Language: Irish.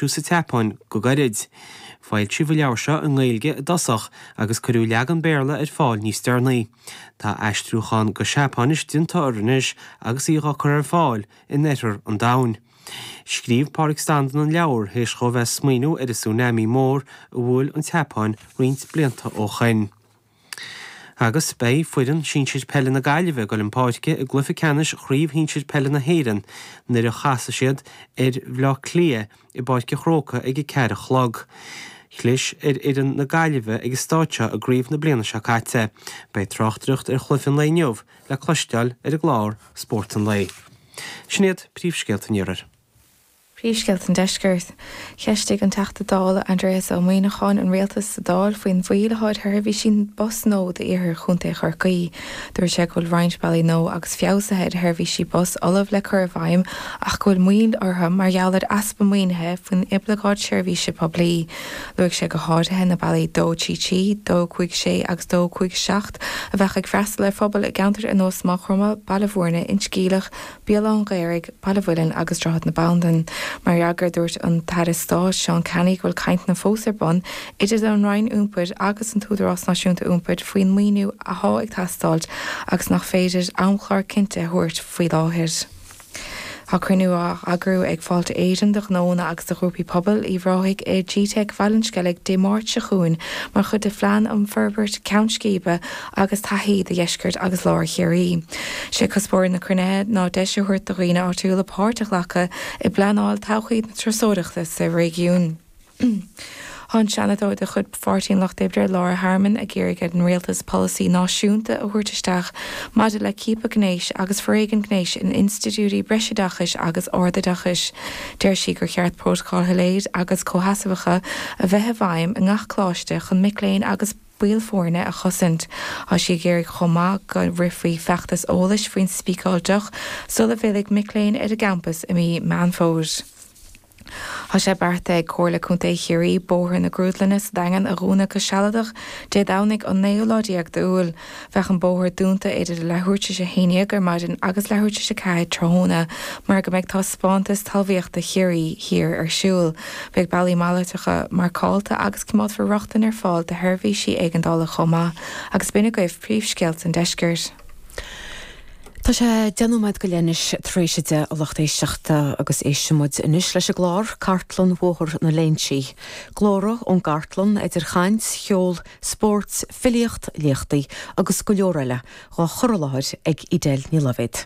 sa tSeapáin go gairid. Foilsíodh an leabhar seo i nGaeilge i dtosach agus cuireadh leagan Béarla ar fáil níos deireanaí. Tá aistriúchán go Seapáinis déanta air anois agus í dhá cur ar fáil in oirthear an domhain. Scríobh Pádraig Standún an leabhar théis dhó bheith ag smaoiniú ar an tsunami mór a bhuail an tSeapáin roinnt blianta ó shoin. Agus beidh foireann sinsir peile na Gaillimhe ag dul chun páirce i gcluiche ceannais Chraobh Shinsir Peile na hÉireann nuair a chasfaidh siad ar Bhaile Átha Cliath i bPáirc an Chrócaigh ag a ceathair a chlog. Chlis ar fhoireann na Gaillimhe ag an stáid seo i gcraobh na bliana seo caite. Beidh tráchtaireacht ar chluiche an lae inniu le cloisteáil ar an gclár Spórt an Lae. Sin iad príomhscéalta an iarthair. Príomhscéalta an Deiscirt, Cheistigh an Teachta Dála Aindreas Ó Muíneacháin an Rialtas sa Dáil faoin mhoill atá ar sheirbhísí bus nua d'iarthar Chontae Chorcaí. Dúirt sé go bhfuil roinnt bealaí nua agus feabhsuithe ar sheirbhísí bus ullamh le cur i bhfeidhm ach go bhfuil moill orthu mar gheall ar easpa maoinithe faoin Oibleagáid Seirbhíse Poiblí. Luaigh sé go háirithe na bealaí 233, 256 agus 257 a bheadh ag freastal ar phobail i gceantair ar nós Maigh Chromtha, Baile Bhúirne, Inse Geimhleach, Béal Átha an Ghaorthaidh, Baile an Mhuilinn agus Droichead na Bandan. Mar fhreagra dúirt an tAire Stáit, Seán Canney, go bhfuil cainteanna fós ar bun idir an Roinn Iompair agus an tÚdarás Náisiúnta Iompair faoin maoiniú athá ag teastáilt agus nach féidir amchlár cinnte a thabhairt faoi láthair. Tá cruinniú á eagrú ag Fáilte Éireann do ghnóanna agus do ghrúpaí pobail Uíbh Ráthaigh i gteic Bhaile an Sceilg Dé Máirt seo chugainn mar chuid de phlean um fhorbairt ceann scríbe agus taithí do dheisceart agus lár Chiarraí. 'Sé cuspóir na cruinnithe ná deis a thabhairt do dhaoine áitiúla páirt a ghlacadh i bpleanáil todhchaí na turasóireachta sa réigiún. Tá an Seanadóir de chuid Pháirtí an Lucht Oibre, Laura Harmon, ag iarraidh ar an Rialtas polasaí náisiúnta a thabhairt isteach maidir le ciapadh gnéis agus foréigean gnéis in institiúidí breisoideachais agus ardoideachais. Deir sí gur cheart prótacail shoiléir agus comhsheasmhacha a bheith i bhfeidhm i ngach coláiste chun mic léinn agus baill foirne a chosaint. Tá sí ag iarraidh chomh maith go rithfí feachtas eolais faoin Speak Out Tool sula bhfillfidh mic léinn ar an gcampas i mí Mheán Fómhair. Tá sé beartaithe ag Comhairle Contae Chiarraí Bóthar na Grúdlainne sa Daingean a dhúnadh go sealadach Dé Domhnaigh an naoú lá déag d'Iúil. Bheadh an bóthar dúnta idir leathuair tar éis a haon déag ar maidin agus leathuair tar éis a ceathair tráthnóna mar go mbeidh Taispeántas Talmhaíochta Chiarraí Thiar ar siúl. Beidh bealaí malartacha marcálta agus coimeádfar rochtain ar fáil do sheirbhísí éigeandála chomh maith agus b'in agaibh príomhscéalta an deiscirt. Tá sé deich nóiméad go leith anois tar éis a deich, a lucht éisteachta, agus éistfidh muid anois leis an gclár, Cartlann Bhóthar na Léinsí. Glórtha ón gcartlann, idir chaint, cheol, spórt, filíocht, léachtaí agus go leor eile dhá chur i láthair ag Edel Ní Loibhéid.